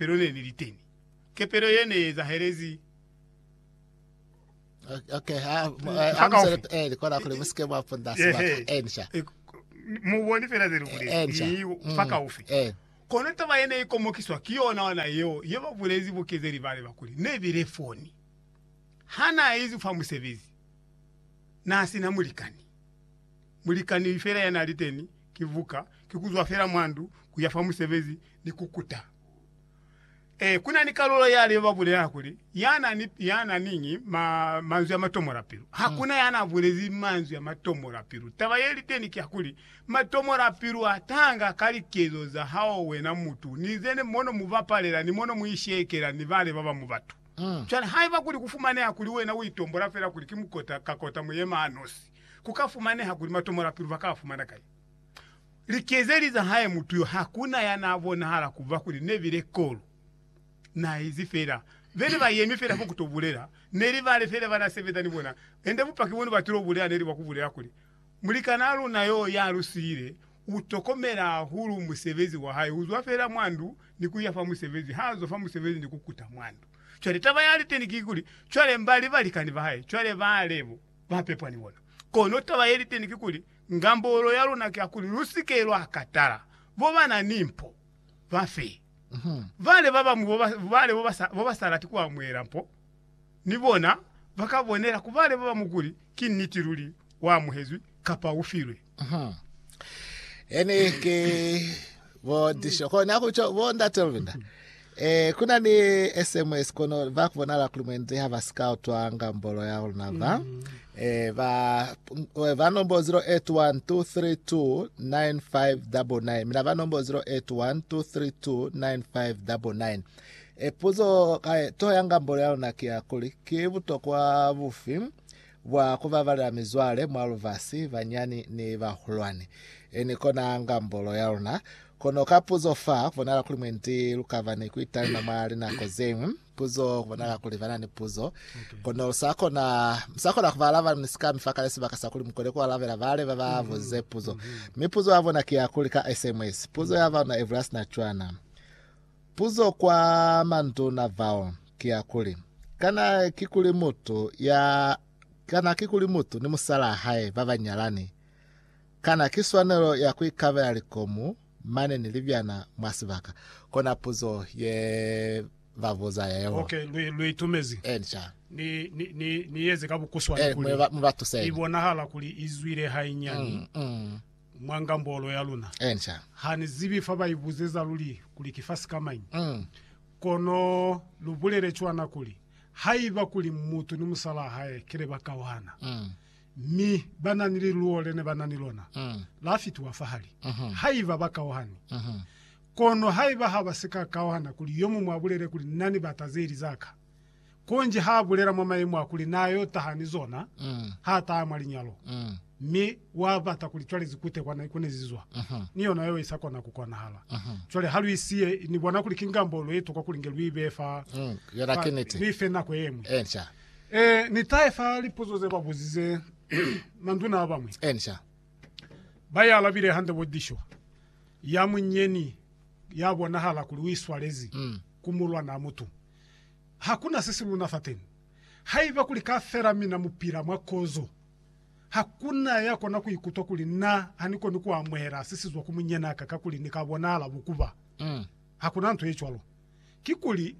Kepelo ne ni li teni. Kepelo ye ne ezahelezi. Okay, ha, mu- eh, Mpaka amusele ufi. pe- eh, kona kuli musike mwa punda Ehe. sebaka. Eh, nisha. E, muboni fela ze lu bulezi. Eh, nisha. Ni Mm, mpaka ufi. Eh, Kono taba ye ne ikomokiswa ki yona ona yeo ye ba bulezi bukezeli bale ba kuli ne bile foni. Ha na izi fa musebezi, na sina mulikani. Mulikani fela ya na li teni Ki vuka, ki ku zwa fela mwa ndu ku ya fa musebezi ni ku kuta. Ee, ku na ni kalulo ya lyo ba bulela kuli, Ya na ni, ya na niñi ma, manzwi a matomola pilu. Ha ku na ya na bulezi manzwi a matomola pilu. Taba ye li teni ki ya kuli, matomola pilu a tanga ka likezo za hao wena mutu, ni ze ne, mo no mu bapalela ni mo no mu ishekela ni bale ba bañwi batu. Cwale haiba kuli ku fumaneha kuli wena u itombola fela kuli ki mukota ka kota muyema-ha-nosi, Ku ka fumaneha kuli matomola-pilu ba ka a fumana kai? Likezeli za hae mutu yo ha ku na ya n'a bonahala ku ba kuli ne bile kolo. N'a izi fela be ne ba yemi fela fo ku t'o bulela. Ne li bale fela ba n'a sebeza ni bona. Ende bupaki bo ne ba til'o bulela ne li bwa ku bulela kuli, Mulikanaa luna yo ya lu siile u tokomela hahulu musebezi wa hae. U zwa fela mwa ndu ni ku ya fa musebezi, ha zwa fa musebezi ni ku kuta mwa ndu. Cwale taba ya liteni ki kuli, cwale mba li balikani ba hae. Cwale bale bo. ba pepwa ni bona. Kono taba ye li teni kikuli, ngambolo ya luna ki ya kuli lu si ke lwa katala bo ba na ni mpo ba fe. Bale ba bañwi bo ba, bale bo ba sa, bo ba sa lati ku amuhela mpo, ni bona ba ka bonela ku bale ba bañwi kuli ki niti luli wa amuhezwi kapa u filwe. Ene ke bo disho kona kutsho bo ndate Luvinda. Eh kuna ni SMS kono va kubonala kuli mwendi ha ba sika utwa ngambolo ya rona va. Eh ba eh, ba nombo 0812329599 mina ba nombo 0812329599. Eh puzo ka to ya ngambolo ya rona ke ya kuli ke butokwa bufi Bwa ku babalela mizwale mwa lubasi, banyani ni bahulwani, ni kona ngambolo ya luna. Kono ka puzo fa, ku bonala kuli mwendi lu ka ba ni ku italima mwa linako ze ñwi. Puzo, ku bonala kuli ba na ni puzo, kono lu sa kona, mu sa kona ku ba alaba ni sikami fa kale sibaka sa kuli mu kone ku alabela bale ba ba buzize puzo. Mi puzo ya bona ki ya kuli ka SMS, puzo ya ba luna e bula sina cwana. Puzo kwa manduna bao ki ya kuli, Kana ki kuli mutu ya, kana ki kuli mutu ni musalaa hae ba ba nyalani, kana ki swanelo ya ku ikabela likomu mane ni libyana mwa sibaka? Kona puzo ye ba buza yeo. Ok, lu, lu itumezi. Ee, ni ca. Ni, ni, ni, ni yeze ka bukuswana kuli i bonahala kuli i zwile hainyani. Mm, mm. mwa ngambolo ya luna. Enca. Ha ni zibi fa ba ibuzeza luli kuli ki fa sikamañi. Mm. Kono lu bulele cwana kuli, Haiba kuli mutu ni musalaa hae ki le ba kauhana, Mm. mi ba na ni liluwo le ne ba na ni lona, Mm. la fitiwa fahali. Mhm. Haiba ba kauhani. Mhm. Kono haiba ha ba si ka kauhana kuli yo muñwi a bulele kuli, Na ni bata ze li za ka. Konji ha bulela mwa mayemo a kuli na yo taha ni zona ha taha mwa linyalo, mi wa bata kuli cwale zi kute kwa na ikunezi zwa ni yona yo isa kona ku konahala. Cwale ha lu isiye, Ni bona kuli ki ngambo lwa itokwa kuli nge lu ibe fa, fa lu ife nako yeñwi. Ee, ni tahe fa lipuzo ze ba buzize manduna a bañwi. Ba ialabile hande bo dishwa. Ya munyeñi ya bonahala kuli u iswalezi ku mulwanaa mutu. Ha ku na se si luna fateni. Haiba kuli kafela mina mu pila mwa kozo, ha ku na ya kona ku ikutwa kuli na ha ni koni ku amuhela se si zwa ku munyanaka kakuli ni ka bonahala bukuba. Ha ku na nto ye cwalo. Kikuli,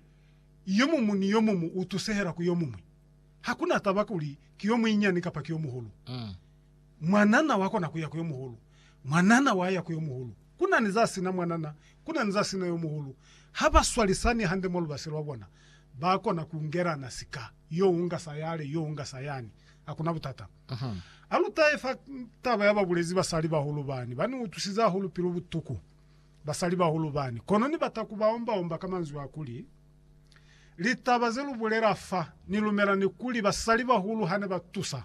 yomumu ni yomumu u tusehela ku yomuñwi. Ha ku na taba kuli ki yomuinyani kapa ki yomuhulu. Mwanana wa kona kuya ku yo muhulu. Mwanana wa ya ku yo muhulu. Ku na ni za sina mwanana, ku na ni za sina yo muhulu. Ha ba swalisani hande mwa lubasi lwa bona, ba kona ku ngelana sika, yo unga sa yale, yo unga sa yani. Ha ku na butata. Ha lu tahe fa taba ya ba bulezi basalibahulu bani, ba ni utwisize hahulu pilu butuku basalibahulu bani. Kono ni bata ku ba omba-omba ka manzwi a kuli, Litaba ze lu bulela fa, ni lumela ni kuli basalibahulu ha ne ba tusa.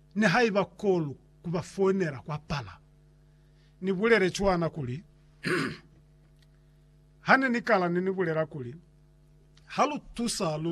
nihaiba kolu ku ba founela kwa pala. Ni bulele cwana kuli, Hane ni kala ni ni bulela kuli, Ha lu tusa, lu